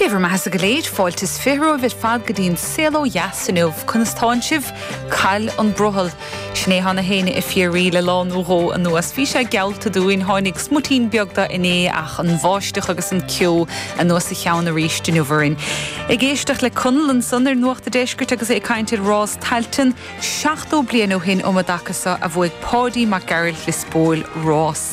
Dé bhur mbeathasa go léir, fáilte is fiche romhaibh ar fad go dtí an saol ó dheas inniu. Conas tánn sibh? Cá bhfuil an brothall. Sin é atánn siad ag fiafraí le lá nó dhó anuas. Bhí sé geallta dúinn. Tháinig smuitín beag de inné ach an bháisteach agus an ceo anuas a cheann arís inniu orainn. Ag éisteacht le Conall ansan ar Nuacht an Deiscirt agus é ag caint ar rás Tailteann 70 bliain ó shin ambaic a bhuaigh Páidí Mac Gearailt é spóil rás.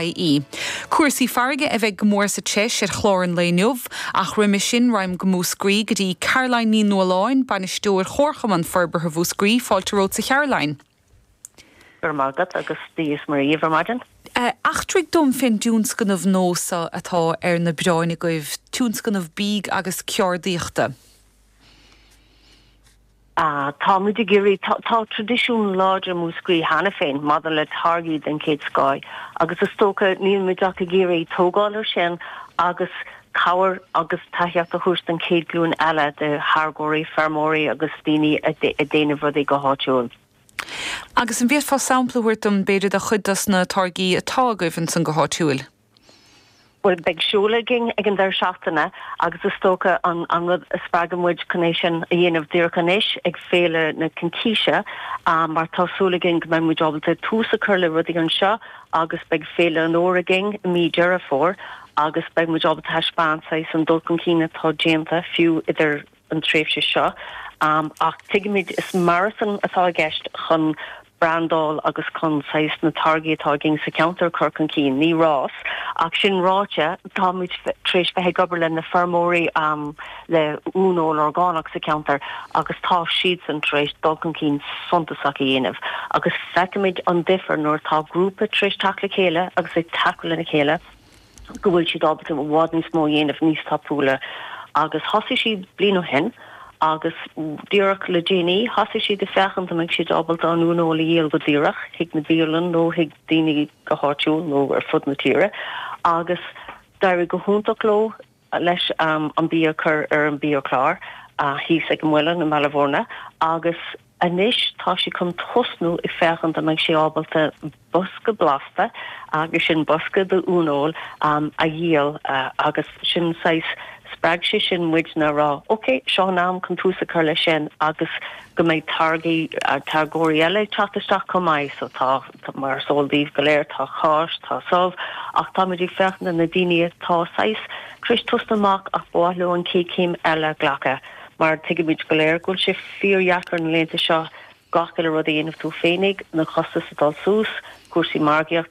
ie. Cúrsaí farraige a bheidh go mór sa treis ar chlár an lae inniu, ach roimhe sin raghaimid go Múscraí go dtí Caroline Ní Nualláin, Bainisteoir Chomharchumann Forbartha Mhúscraí, fáilte romhatsa a Charoline. Go raibh maith agat agus Dia's Muire ar maidin. Eachtraigh dom fén dtionscnamh nua so atá ar na bioráin agaibh, tionscnamh bídh agus ceardaíochta. Táimid ag iarraidh, tá tradisiún láidir i Múscraí cheana féin maidir le táirgí den chéad scoth agus is dócha, níl muid ach ag iarraidh tógáil ar sin agus cabhair agus tacaíocht a thabhairt don chéad glúin eile de tháirgeoirí, feirmeoirí agus daoine ag déanamh rudaí go háitiúil. Agus an bhféadfá sampla a thabhairt dom, b'fhéidir, de chuid dos na táirgí atá agaibh ansan go háitiúil? Bhuel beidh seoladh againn ag an deireadh seachtaine agus is dócha an an rud a spreag muid chun é sin a dhéanamh díreach anois ag Féile na Cincíse mar tá súil againn go mbeidh muid ábalta tús a chur le rudaí anseo agus beidh Féile an Fhomhair againn i mí Deireadh Fómhair agus beidh muid ábalta taispeáint saghas an dul chun cinn atá déanta fiú idir an tréimhse seo ach tuigimid is maratón atá i gceist chun brandáil agus chun saghas na táirgí atá againn sa cheantar a chur chun cinn, ní rás ach sin ráite, táimid tar éis bheith ag obair le na feirmeoirí le uaineoil orgánach sa cheantar agus tá siadsan tar éis dul chun cinn suntasach a dhéanamh agus feicimid an difear nuair atá grúpa tar éis teacht le chéile agus ag tacú lena chéile. go bhfuil siad ábalta i bhfad níos mó a dhéanamh níos tapúla agus thosaigh siad bliain ó shin agus díreach le déanaí thosaigh siad ag féachaint an mbeidh siad ábalta an uaineoil a dhíol go díreach chuig na bialann nó chuig daoine go háitiúil nó ar fud na tíre agus d'éirigh go hiontach leo. leis an bia a chur ar an biachlár thíos ag an Muileann i mBaile Bhúirne agus anois táimid chun tosnú ag féachaint an mbeidh siad ábalta bosca blasta, agus sin bosca d'uaineoil, a dhíol agus sin saghas, spreag sé sin muidne a rá ok, seo an am chun tús a chur leis sin agus go mbeidh táirgí, táirgeoirí eile ag teacht isteach chomh maith so tá. Mar is eol daoibh go léir tá cáis, tá subh, ach táimid ag féachaint do na daoine atá saghas tar éis tosnú amach ach ba mhaith leo an chéad chéim eile a ghlacadh. Mar tuigimid go léir go bhfuil sé fíordheacair na laethanta seo gach uile rud a dhéanamh tú féinig, na costais ag dul suas, cúrsaí margaíochta,